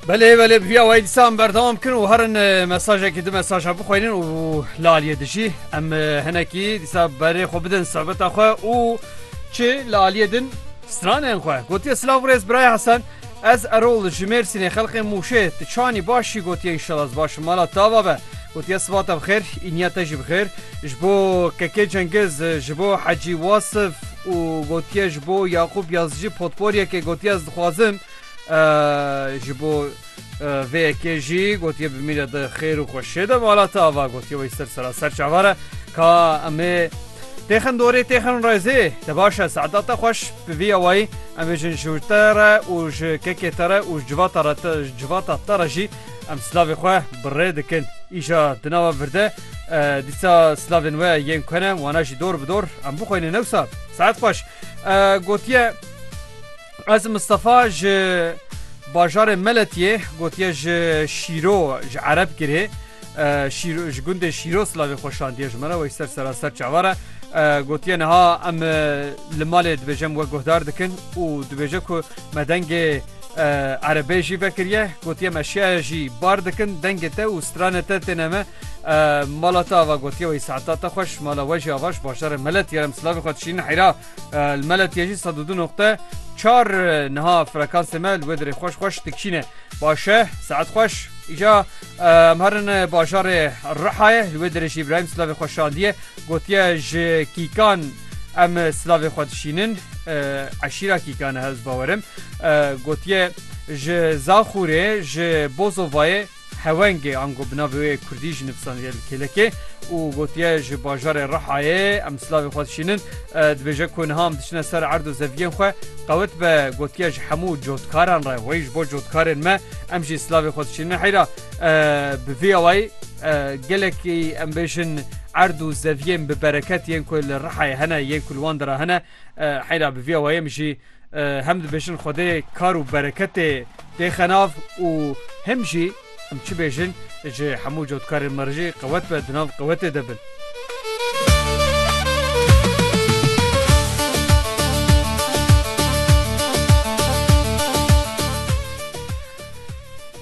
Belê belê bi vîya wayî dîsan berdewam bikin û herin mesajekî di mesaja bixwînin û li aliyê dijî em hinekî dîsa berê xwe bidin sohbeta xwe û çi li aliyê din stranên xwe gotiye silav rêz biraya hesen ez erol ji mêrsînê xelqê mûşê tu çanî başî gotiye înşala ez baş mala tava be gotiye sibata bixêr îniya te jî bixêr ji bo kekê cengiz ji bo hecî wasif û gotiye ji bo Yaqûp Yazıcı potporyekê gotiye ez dixwazim ji bo vê yekê jî gotiye bimîne di xêr û xweşê de malata ava gotiye wê ser sera ser çavare ka em ê têxin dorê têxin rêzê te baş e saeta te xweş bi vî awayî em bêjin ji te re û ji kekê te re û ji civata re te civata te re jî em silavê xwe bi rê dikin îja di nava vir de Dîsa slavên we yên ku ne wana jî dor bi dor em bixwînin newsa saet xweş gotiye Ez Mistefa ji bajarê Meletiyê gotiye ji şîro ji ereb girê ji gundê şîro slavê xweşandiye ji me re wey ser seraser çavare gotiye niha em li malê dibêjem we guhdar dikin û dibêje ku Me dengê erebê jî vekiriye gotiye me şiyaya jî bar dikin dengê te û stranê te têne me mala te ava gotiye wê saeta te xweş mala we jî avaş başarê melet yerem silavê xwe dişînin heyra li melet ye jî sed û du noqte çar niha frekansê me li wê dirê xweş xweş dikişîne başe saet xweş îca Em herin bajarê Rihayê li wê derê jî Îbrahîm silavê xwe şandiye gotiye ji kîkan em silavê xwe dişînin eşîra kîkan e hewz bawerim gotiye ji Zaxûrê ji Bozovayê hewengê ango bi navê wê Kurdî jî nivîsandiye li kêlekê û gotiye ji bajarê Rihayê em silavê xwe dişînin dibêje ku niha em diçine ser erd û zeviyên xwe qewit be gotiye ji hemû cotkaran re wey ji bo cotkarên me Em jî silavê xwe diçînin heyra bi vî awayî gelekî em bêjin erd û zeviyên bi bereket yên ku li rihayê hene yên ku li wan dira hene heyra bi vî awayê em jî hem dibêjin xwedê kar û bereketê dêxe nav û hem jî em çi bêjin ji hemû cotkarên me re jî qewet be di nav qewetê de bin.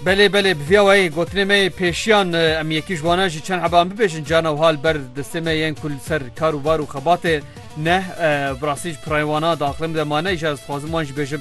Belê belê bi vîya wayê gotinê me yê pêşiyan em yekî ji wana jî çend heban bibêjin cana û hal ber destê me yên ku li ser kar û bar û xebatê neh bi rastî ji pirayê wana di aqilê min de mane îşa ez dixwazim wan jî bêjim